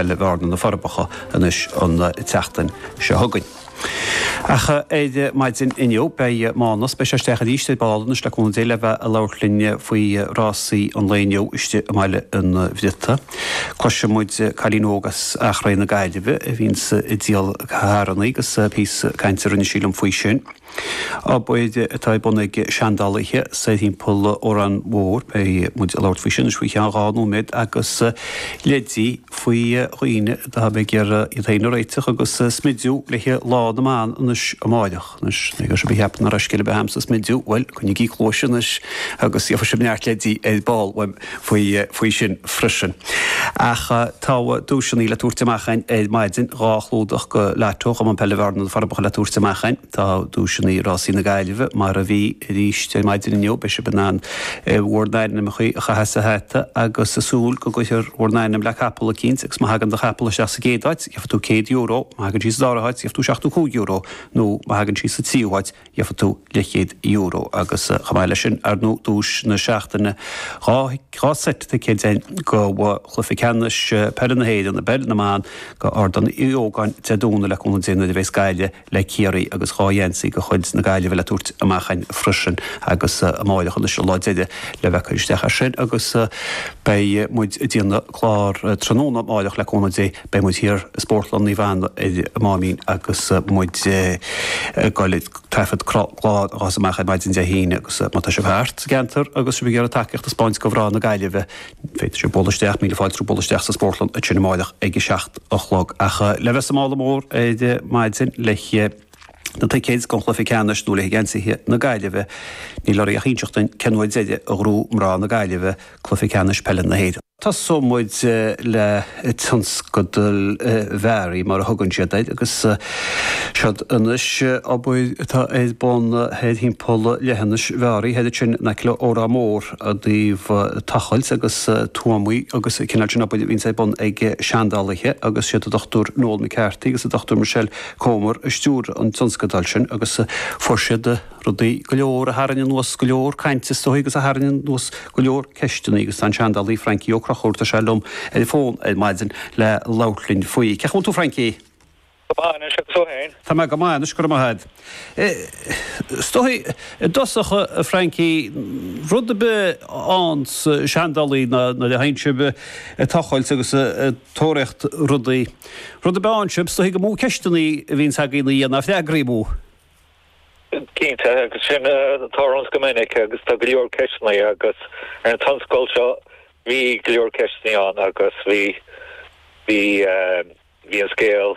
le Bearna Na Forbacha anois an tseachtain seo chugainn. Ach ar maidin inniu, beidh Mánas, beidh sé istigh arís ar ball anois le cúnamh Dé, le bheith ag labhairt linn faoi rásaí an lae inniu istigh i mBaile an Bhriota. Cloisfidh muid cailín óg as Achréidh na Gaillimhe a bhíonns ag díol carrannaí agus píosa cainte a rinne sí liom faoi sin. Obair atá ar bun ag seandálaithe soir thimpeall Órán Mór, beidh muid ag labhairt faoi sin anois faoi cheann dhá nóiméad, agus leidí faoi dhaoine a bheidh ag iarraidh iad féin a réiteach agus a smidiú le haghaidh Lá na mBan anois amárach. Anois, má tá sibh ag ceapadh nach bhfuil scil ar bith a'm sa smidiú, bhuel, coinnigí cluais anois agus gheobhaidh sibh neart leidí ar ball uaim. faoi sin freisin. Ach tá duaiseanna le tabhairt amach a'inn ar maidin, dhá chlúdach do Lotto, Cumann Peile Bhearna, Na Forbacha le tabhairt amach a'inn. Tá duaiseanna Rásaí na Gaillimhe mar a bhí aríst ar maidin inniu. Beidh sibh in ann bhur n-ainmneacha a chaitheamh sa hata agus a' súil go gcuirfear bhur n-ainm le capall eicínt agus má thagann do chapall isteach sa gcéad áit, gheobhaidh tú céad euro, má thagann sí sa dara háit, gheobhaidh tú seachtó cúig euro nó má thagann sí sa tríú háit, gheobhaidh tú leithchéad euro agus chomh maith leis sin, ar ndóigh, duais na seachtaine, dhá dhá seit ticéid féin do Chluiche Ceannais Peile na hÉireann i bPeil na mBan do Ardán Uí Ógáin, Dé Domhnaigh, le cúnamh Dé nuair a bheas Gaillimh le Ciarraí agus dhá gheansaí de chuid na Gaillimhe le tabhairt amach a'inn freisin agus amárach anois an lá deiridh le bheith ag cur isteach ar sin agus beidh muid ag déanamh clár tráthnóna amáireach le cúnamh Dé beidh muid thiar i Spórtlann Naomh Anna ar an Máimín agus muid ag goil ag taifead clár a ghabhfas amach ar maidin Dé hAoine agus má tá sibh thart sa gceantar agus sibh ag iarraidh tacaíocht a thaispeáint do mhná na Gaillimhe féadfaidh sibh bualadh isteach, míle fáilte romhaibh bualadh isteach sa Spórtlann ansin amáireach ag a seacht a chlog ach le bheith sa mála mór ar maidin le haghaidh na ticéid don chluiche ceannais nó le haghaidh geansaithe na Gaillimhe, níl oraibh ach inseacht dúinn cén uair deiridh a ghnóthaigh mná na Gaillimhe cluiche ceannais peile na hÉireann. Tosóidh muid le Tionscadal Mheáraí, mar a thugann siad air, agus siod anois obair atá ar bun thoir thimpeall Leithinis Mheáraí, thoir ansin in aice le Órán Mór, i dtaobh tochailt agus tuamaí agus an cineál sin obair a bhíonns ar bun ag seandálaithe agus siad an Dr. Noel McCarthy agus an Dr. Michelle Comber a stiúir an tionscadal sin agus fuair siad rudaí go leor a tharraing anuas go leor cainte is dóigh agus a tharraing anuas go leor ceisteanna agus tá an seandálaí Francie Ó Conchúir, tá sé liom ar an bhfón ar maidin le labhairt linn faoi. Cén chaoi a bhfuil tú Francie? Go maith anois agus tú fhéin? Tá mé go maith anois go raibh maith a'd. Is dóigh i dtosach a Francie, rud a bith ann sa seandálaí ná nuair a théann sibh a tochailt agus a. tóraíocht rudaí. Rudaí, b'in sin, stoithigh amú, ceisteannaí a bhíonns againn a dhéanamh, freagraí amú. Cinnte, agus sin atá ormsa go minic agus tá go leor ceisteannaí agus ar an tionscadal seo bhí go leor ceisteannaí ann agus bhí, bhí, bhí an scéal.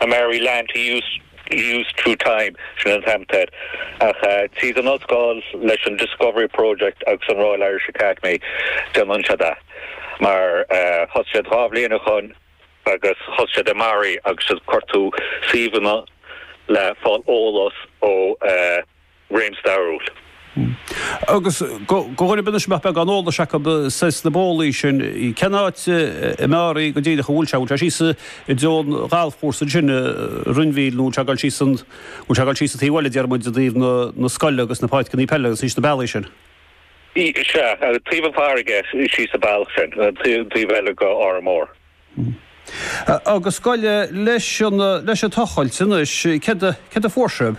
a Mary Lamb to use use through time sin an t-am tar éis tríd an ollscoil leis an Discovery Project agus an Royal Irish Academy déanann siad a mar thosaigh siad dhá bhliain ó shin agus thosaigh siad i Mearaí agus cuirteadh suíomhanna le fáil eolas ó réim stairiúil. Agus go gairid ina mbeadh beagán eolais acu sna bólaí sin, cén áit i Mearaí go díreach a bhfuil sé? Bhfuil sé síos i dtreo an ghalfchúrsa ansin, Rinn Mhíl, nó bhfuil sé ag dul síos an, bhfuil sé ag dul síos an taobh eile, déarfaidh muid, i dtaobh na scoile agus na páirceannaí peile agus síos na bólaí sin? Sea, taobh an pháirc síos an bealach sin, an taobh eile go hÓrán Mór. Hm. Agus gabh i leith leis an, leis an tochailt anois, céard a, céard a fuair sibh?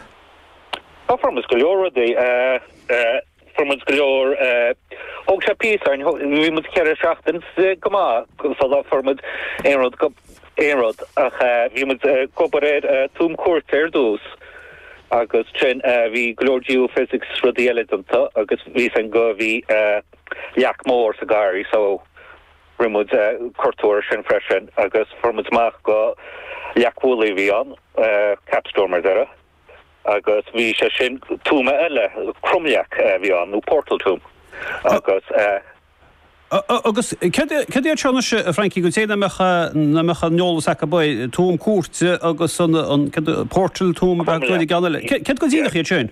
Ó, fuair muid go leor rudaí. Fuair muid go leor, thóg sé píosa orainn, bhí muid ceithre seachtain go maith sular fuair muid aon, aon rud ach bhí muid ag obair ar Tuam Cúirte ar dtús agus ansin bhí go leor geophysics is rudaí eile déanta agus bhí san go, bhí leac mór sa garraí, so, Rinne muid cuartú air sin freisin agus fuair muid amach gur leac mhullaigh a bhí ann, capstone mar a déarfá, agus bhí sé sin, tuama eile, cromleac a bhí ann, nó portal tomb agus. Agus céard iad seo anois, a Francie, do dhaoine nach mbeadh an t-eolas acu, abair, tuam cúirte agus an, céard, portal tomb, céard go díreach iad sin?